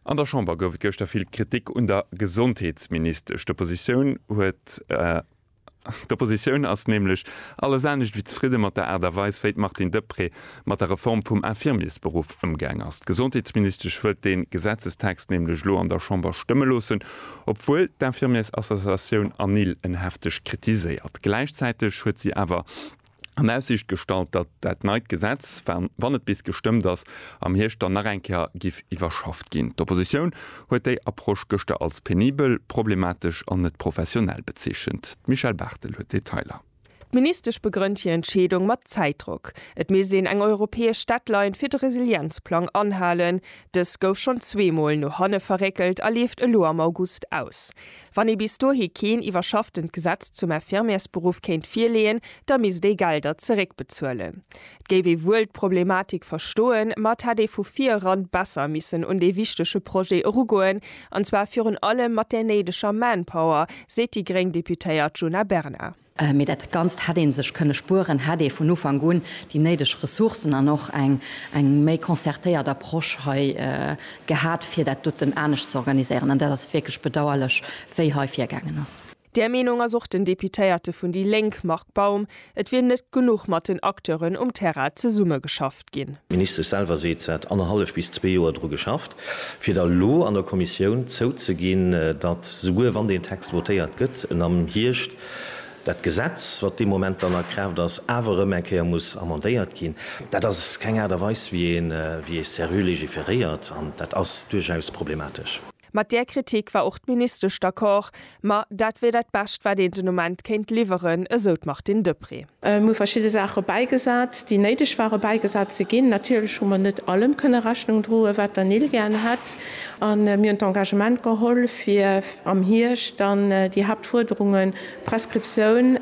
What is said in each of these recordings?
An der Chamber gouf et gëschter vill Kritik un der Gesondheetsministesch. D'Oppositioun huet d'Oppositioun ass nämlech alles anescht wéi zefridde mat der Aart a Weis, wéi d'Martine Deprez mat der Reform vum Infirmiersberuff ëmgaang ass. D'Gesondheetsministesch wëllt dee Gesetzestext nämlech elo an der Chamber stëmme loossen, obwuel d'Infirmiersassociatioun ANIL en hefteg kritiséiert. Gläichzäiteg huet si awer. an Aussicht gestallt, datt dat neit Gesetz, wann et bis gestëmmt ass, am Hierscht dann nach eng Kéier giff iwwerschafft ginn. D'Oppositioun huet déi Approche gëschter als penibel, problematesch an net professionell bezeechent. D'Michèle Barthel huet d'Detailer. D'Ministesch begrënnt hir Entscheedung mat Zäitdrock. Et misst een eng europäesch Deadline fir de Resilienzplang anhalen. Dës gouf schonn zweemol no hanne verréckelt a leeft elo am August aus. Wann ee bis dohi keen iwwerschafftent Gesetz zum Infirmiersberuff kéint virleeën, da misst ee Gelder zeréckbezuelen. Et géif ee wuel d'Problematik verstoen, ma et hätt ee vu vir eran besser missen un dee wichtege Projet erugoen, an zwar virun allem mat där néideger Manpower, seet déi gréng Deputéiert Djuna Bernard. Mee dat Ganzt hätt ee sech kënne spueren, hätt ee vun Ufank un déi néideg Ressourcen an och eng méi concertéiert Approche hei gehat, fir dat doten anescht ze organiséieren. An dat ass wierklech bedauerlech, wéi hei virgaangen ass. Där Meenung ass och den Deputéierte vun déi Lénk, Marc Baum. Et wier net genuch mat den Acteuren um Terrain zesummegeschaff. ginn. D'Ministesch selwer seet, se hätt annerhallef bis zwee Joer dru geschafft, fir da lo an der Kommissioun zouzeginn, datt, souguer wann deen Text votéiert gëtt, en am Hierscht dat Gesetz, wat dee Moment dann a Kraaft ass, awer erëm eng Kéier muss amendéiert ginn. Dat ass keng Aart a Weis, wéi ee serrë legiferéiert, an dat ass duerchaus problematesch. Mat där Kritik war och d'Ministesch d'accord. Ma dat wier dat Bescht, wat een den Ament kéint liwweren, esou d'Martine Deprez. Mir hu verschidde Saache bäigesat, déi néideg ware bäigesat ze ginn. Natierlech hu mer net allem kënne Rechnung droen, wat der Nil gär hätt. A mir hunn d'Engagement geholl, fir am Hierscht dann déi Haaptfuerderungen, d'Prescriptioun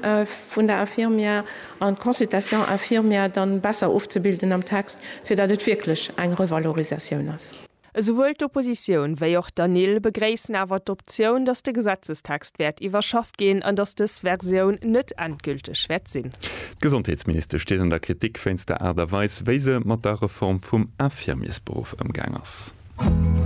vun der Infirmière an d'Consultation infirmière, dann besser ofzebilden am Text, fir datt et wierklech eng Revalorisatioun ass. Esouwuel d'Oppositioun wéi och d'ANIL begréissen awer d'Optioun, datt de Gesetzestext wäert iwwerschafft ginn an datt dës Versioun net endgülteg wäert sinn. D'Gesondheetsministesch steet an der Kritik wéinst der Aart a Weis, wéi se mat der Reform vum Infirmiersberuff ëmgaang ass.